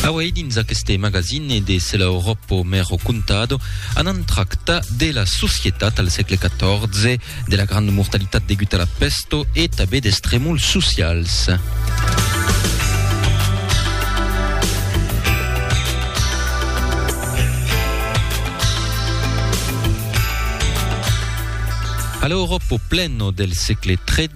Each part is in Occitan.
Auei dins aqueste magazine de Se l'Europo me ho contado, anam tractar de la societat al sègle XIV, de la granda mortalitat degut a la pesto e tabé des tremols socials. A l'Europo pleno del sègle XIII,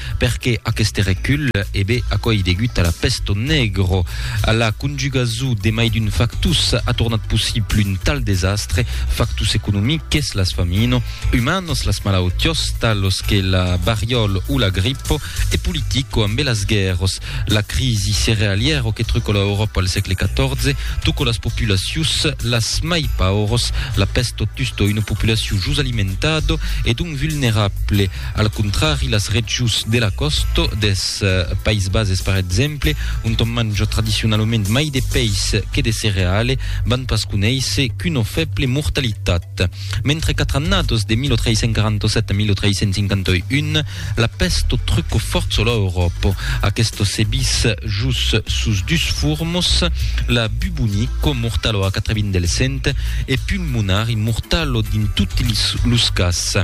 Perqué aqueste recul? E be, aquò ei degut a la pesto negro. A la conjugason de mai d'un factus a tornat possible un tal desastre, factus economiques, las famino, umanos, las malautiós, talos que la variòl o la gripo, e politico, ambe las guèrros, la crisi cerealièro que truco la Euròpa al sègle XIV, tuco las populacius las mai pauros, la pesto tusto una populaciu jos alimentado e donc vulnerable. Al contrari, las regions de la còsta dels Païses Bases, per exemple, ont òm manja tradicionalament mai de pèis que de cereale, van pas conéisser qu'una fèble mortalitat. Mentre quatre annados, de 1347 a 1351, la pèst truca fòrça lor Euròpa. Aquesta se vis jos sos dus formos, la bubonico, mortalo a quatre vint del cent, e pulmonari, mortalo dins totes los cas.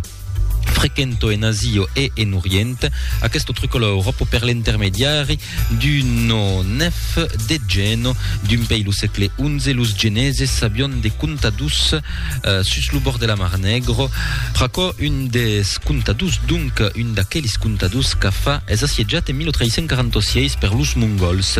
frequento en Asio e en Orient, aquesto trucola Euròpo per l'intermediari d'uno nef de Geno, d'un pei lo sègle XI, los Geneses sabion de contadus eh, sus lo bòrd de la Mar Negro, pr'aquò un des contadus, donc un d'aquelis contadus qu'a fa es assietjat en 1346 per los Mongols.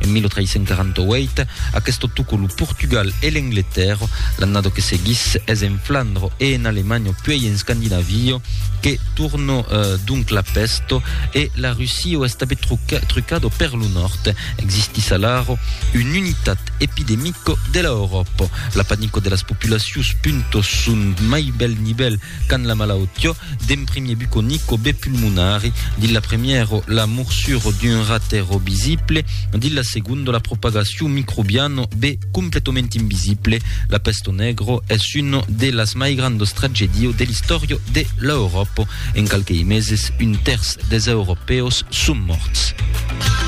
En 1348, aqueste tocó lo Portugal e l'Engletèrra, l'annada que seguís es en Flandre e en Alemanha puèi en Scandinavia que tornó donc la pèst e la Russia es tabé trucada per lo nòrd. Existís alara un unitat epidemica de l'Euròpa. La panica de las populacions punta son mai bèl nivèl Quand la malautió d'en primier buconic o be pulmonari, dins la premièro la morsuro d'un ratèro visible, dins la segondo la propagacion microbiano be completament invisible, la pesto negro es uno de las mai grandos tragedios de l'istòrio de l'Euròpo. En qualquei meses un tèrç des Europèus son mòrts.